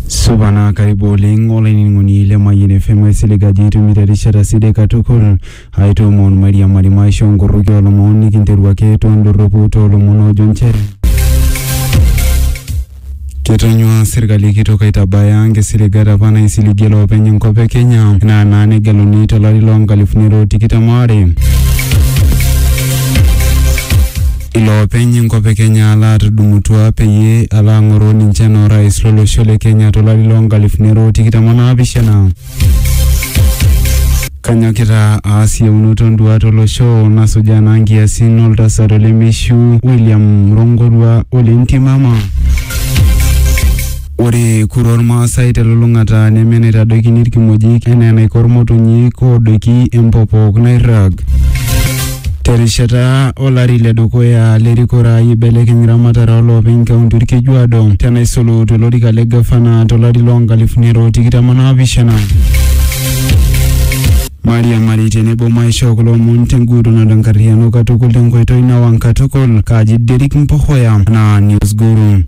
supa naa karibu oleng olainining'oni le Mayian FM aisilig ajo itumito erishata sidai katukul aitoomon mairiamari maisho nkorroki oolomon nikinteru ake toondorropu toolomon oojo nchere ketonyua sirkali kitok aitabaya nkisiligat apa naisiligie loopeny enkop e Kenya naa naa negeluni tolari loo nkalifuni are o tikitam aare Iloopeny enkop e Kenya laatudumutua peyie alo ang'oroo ninche anaa orais lolosho le Kenya to lari loo nkalifuni are o tikitam o naapishana. Kanyokita aas iyieunoto o nduaat o losho nasujaa naa nkiasin o ltasat o lemeishiu William Rongorua o le Ntimama. Ore kura Olmaasai te lulung'ata neme enaitadoikini ilkimojik enaa enaiko ilmotonyik oodoiki empopok nairrag. Te rishata o lari le dukuya le rikore ai eibelekeny ramatare oo loopeny kaunti Olkejuado te naisulu to lorika le gavana to lari loo nkalifuni are o tikitam o naapishana. Mairiamari tenebo maishoo kulo omon tenguutunoto enkarriyiano katukul tenkoitoi nawang katukul. Kaaji Derrick Mpohoya anaa Newsguru.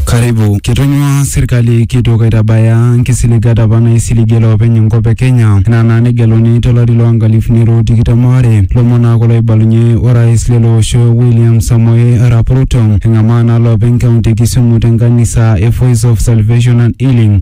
Karibu. Ketonyua serkali kitok aitabaya nkisiligat apa naisiligie loopeny enkop e Kenya ina naa negeluni to lari loo nkalifuni are o tikitam aare. Lomon naa kulo oibalunye orais lelo osho William Samoei Arap Ruto engamaa naa loopeny kaunti e Kisumu te nkanisa e Voice of Salvation and Healing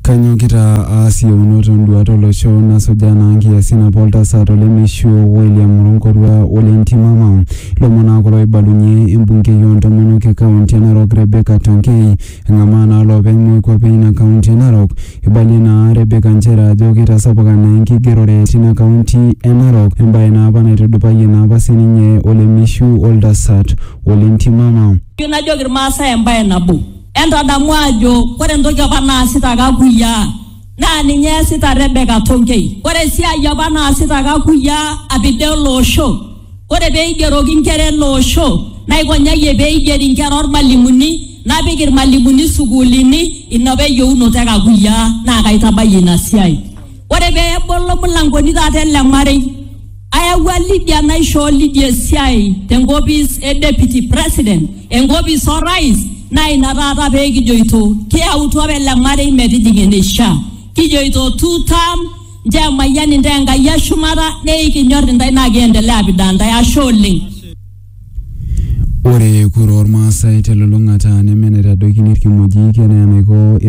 Kanyokita aas iyieunot o nduaat o losho nasujaa naa nkiasin apa o ltasat o lemeishu William Ronkorua ole Ntimama. Ilomon naa kulo oibalunye embungei oo ntomonok e kaunti e Narok Rebecca Tonkei. Eng'amaa naa loopeny moikuape e ina kaunti e Narok. Eibalie naa Rebecca nchere ajo keitasapuka naa enkigerore tina kaunti e Narok embae naa apa naitudupayie naa apa sii ninye olemeishu o ltasat ole Ntimama. Najoki ilmaasai embae nabo. Entadamu ajo ore entoki apa naasita kakuyiaa naa ninye eesita Rebeka Tonkei. Ore esiai apa naasita kakuyiaa apida ele osho, ore pee eigeroki inkera ele osho naikonyayie pee eigeri inkera olmalimuni napik ilmalimuni isukuulini ina apa eyieunoto e kakuyiaa naa kaitabayie ina siai. Ore pee ebolo imulangoni taata ele marei Ayawua Lydia naishoo Lydia esiai te nkopis e Deputy President, enkopis o Rais naa ina taata pee kijoito kiyautua apa ele marei metijing eneishaa. Kijoito two term nchoo emayian intae Enkai e shumata neikinyor intae naa kiendelea apidaa intae. Ashe oleng. Ore kura oolmaasai telulung'ata neme enaitadoikini ilkimojik enaa enaiko